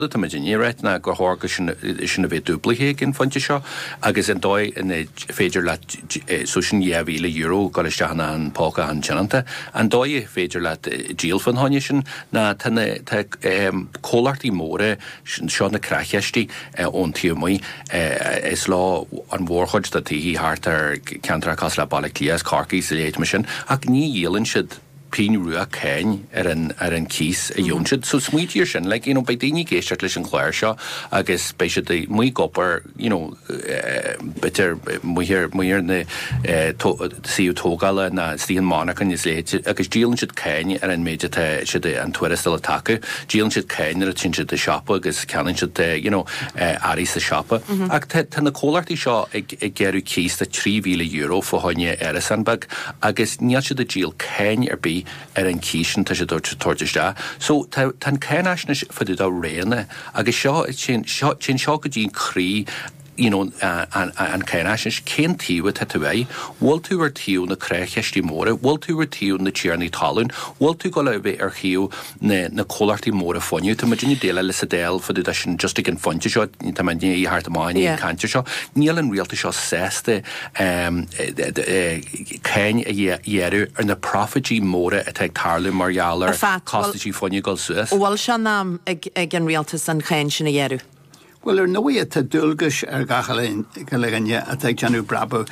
Tá muid ag iarraidh na gcreidmheasa sin a bheith dúblaithe ag an phointe seo agus an dóigh an féidir leat so sin €2,000 ag dul isteach i bpóca an tionónta. An dóigh an féidir leat díol fá choinne sin ná tá na comhlachtaí móra seo na creach-chistí ón taobh amuigh. Is leo an mhórchuid de na tithe thart ar ceantracha cosúil le Baile Átha Cliath is Corcaigh is a leithéidí sin ach ní dhíolann siad. pingin rua cáin ar an ar an cíos a fhaigheann siad so smaointigh ar sin like you know beidh daoine ag éisteacht leis an gclár seo agus beidh siad amuigh ag obair you know b'fhéidir amuigh amuigh ar na suíomh tógála nó istigh i monarchain is a leithéid agus díolann siad cáin ar an méid atá siad an tuarastal atá acu díolann siad cáin nuair a théann siad an siopa agus ceannann siad you know earraí sa siopa ach tá na comhlachtaí seo ag ag gearradh cíos de 3000 euro fá choinne árasán beag Agus níl siad ag díol cáin ar bith ar an cíos sin, atá siad ag tabhairt isteach. So tá an cáinfhaisnéis fá dtaobh de roghanna agus seo, téann seo go dtí an croí you know an cáinfhaisnéis, cén taobh atá tú air? Bhfuil tú ar taobh na creach-chistí móra? Bhfuil tú ar taobh na tiarnaí talún? Bhfuil tú ag gabháil a bheith ar thaobh na na comhlachtaí móra fuinnimh. Tá muidinne ag déileáil leis an Dáil fá dtaobh de sin just ag an phointe seo, tá muidinne ag tabhairt amach in éadan an cainte seo. Níl an rialtas seo sásta cáin a ghearradh ar na proifití móra atá ag tarlú mar gheall ar chostaisí fuinnimh dul suas. Bhuel, seo an t-am ag an rialtas an cháin sin a ghearradh. Bhuel, ar ndóigh tá dualgais ar gach duine atá ag déanamh brabach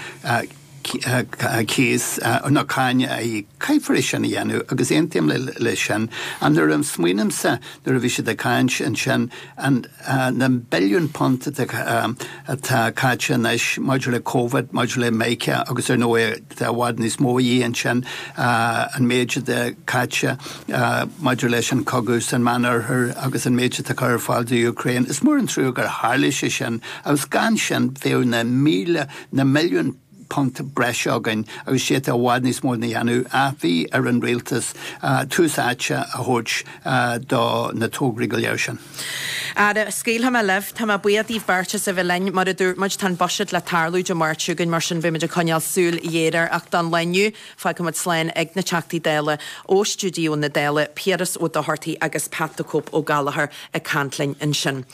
cíos nó cáin a íoc. Caithfear é sin a dhéanamh agus aontaím leis sin. Ach nuair a smaoinimse, nuair a bhí sé ag caint ansin, na billiúin punt atá caite anois maidir le Covid, maidir le mica agus ar ndóigh, i bhfad níos mó a dhíth ansin, an méid atá caite maidir leis an cogadh san Meán Oirthear agus an méid atá curtha ar fáil do Ukraine. Is mór an trua gur tharla sé sin, agus gan sin bheadh na míle, na milliúin punt breise againn agus d'fhéadfaí i bhfad níos mó a dhéanamh. Ach bhí ar an Rialtas tús áite a thabhairt do na tograí go léir sin. Ara, scaoilfidh mé libh. Tá mé buíoch díbh beirt as a bheith linn. Mar a dúirt muid, tá an Buiséad le tarlú Dé Máirt seo chugainn, mar sin beidh muid ag coinneáil súil ghéar air. Ach don lá inniu, fágfaimid slán ag na Teachtaí Dála ó stiúideo na Dála, Piaras Ó Dochartaigh agus Pat the Cope Ó Gallchóir ag caint linn ansin.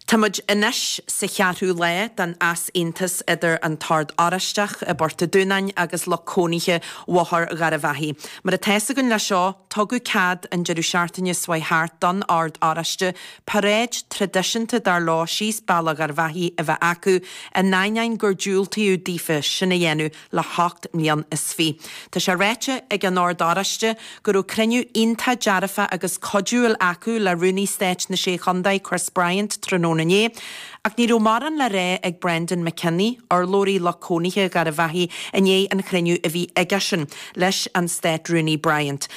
Tá muid anois sa cheathrú lá den easaontas idir an tOrd Oráisteach i bPort an Dúnáin agus lucht cónaithe Bhóthar Gharbhachaidh. Mar atá's againn leis seo, tugadh cead an deireadh seachtaine seo chuaigh thart don Ord Oráiste, paráid traidisiúnta dar leo síos Bealach Gharbh Achaidh a bheith acu, in ainneoin gur diúltaíodh daofa sin a dhéanamh le hocht mbliain is fiche. Tá sé ráite ag an Ord Oráiste go raibh cruinniú iontach dearfa agus cuidiúil acu le Rúnaí Stáit na Sé Chontae, Chris Bryant, tráthnóna inné, Ach ní raibh mórán le rá ag Breandán Mac Cionnaith, urlabhraí lucht cónaithe Gharbh Achaidh, i ndiaidh an chruinniú a bhí aigesean leis an Stát-Rúnaí Bryant.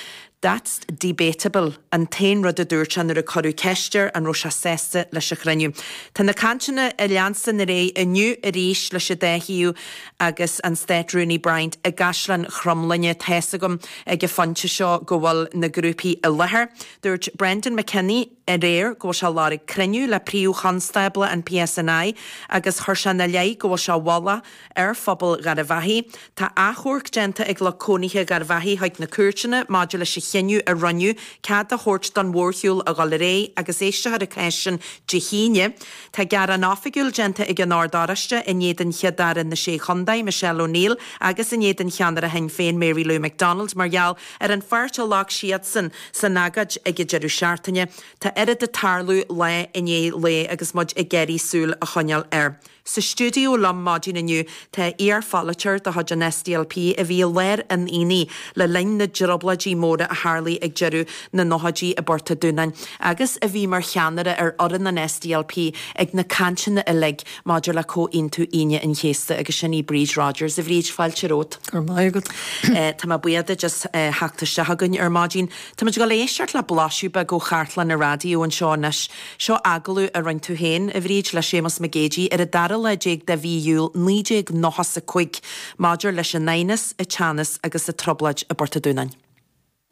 That's debatable, an t-aon rud a dúirt sé nuair a cuireadh ceist air an raibh sé sásta leis an chruinniú. Tá na cainteanna ag leanstan ar aghaidh inniu arís leis an dá thaobh agus an Stát-Rúnaí Bryant i gCaisleán Chromghlinne. Tá's agam ag an phointe seo go bhfuil na grúpaí i láthair. Dúirt Breandán Mac Cionnaith. aréir go bhfuil sé ag lorg cruinniú le Príomh-Chonstábla an PSNI agus chuir sé ina leith go bhfuil sé ag fealladh ar phobal Gharbh Achaidh Tá achomharc déanta ag lucht cónaithe Gharbh Achaidh chuig na cúirteanna maidir leis an chinneadh a rinneadh cead a thabhairt don mhórshiúl a dhul ar aghaidh agus éistfear an cás sin Dé hAoine. Tá gearán oifigiúil déanta ag an Ord Oráiste in éadan Chéad-Aire na Sé Chontae, Michelle O'Neill, agus in éadan cheannaire Shinn Féin, Mary Lou McDonald, mar gheall Ar an pháirt a ghlac siadsan san agóid ag an deireadh seachtaine, tá oiread ag tarlú lá i ndiaidh lae agus muid ag iarraidh súil a choinneáil air. Sa stiúideo liom maidin inniu tá iar-pholaiteoir de chuid an SDLP a bhí i lár an aonaigh le linn na dtriobláidí móra a tharlaigh ag deireadh na nóchaidí i bPort an Dúnáin, agus a bhí mar cheannaire ar fhoireann an SDLP ag na cainteanna uilig. maidir le Comhaontú Aoine an Chéasta agus sin í Bríd Rodgers. A Bhríd, fáilte romhat. Go raibh maith agat. Tá mé buíoch duit as theacht isteach againn ar maidin. Táimid ag dul a éisteacht le blaiseadh beag ó chartlann an raidió anseo anois. Seo agallamh a rinne tú féin, a Bhríd, le Séamus Mac Géidigh ar an dara lá déag de mhí Iúil 1995 maidir leis an aighneas, an teannas agus an trioblóid i bPort an Dúnáin.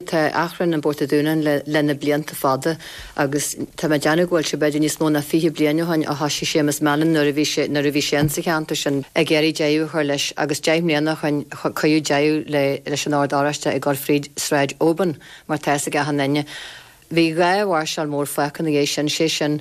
Tá achrann i bPort a' Dúnáin le na blianta fada agus tá mé ag déanamh go bhfuil sé b'fheidir níos mó ná fiche bliain ó shoin ó thoisigh Séamus Mallon nuair a bhí sé nuair a bhí sé ins an cheantar sin ag iarraidh deireadh a chur leis agus deich mbliana ó shoin cuireadh deireadh leis an Ord Oráiste ag dul fríd Sráid Obin mar tá's ag achan duine. Bhí dhá mháirseáil mór fágtha ina dhiaidh sin sé sin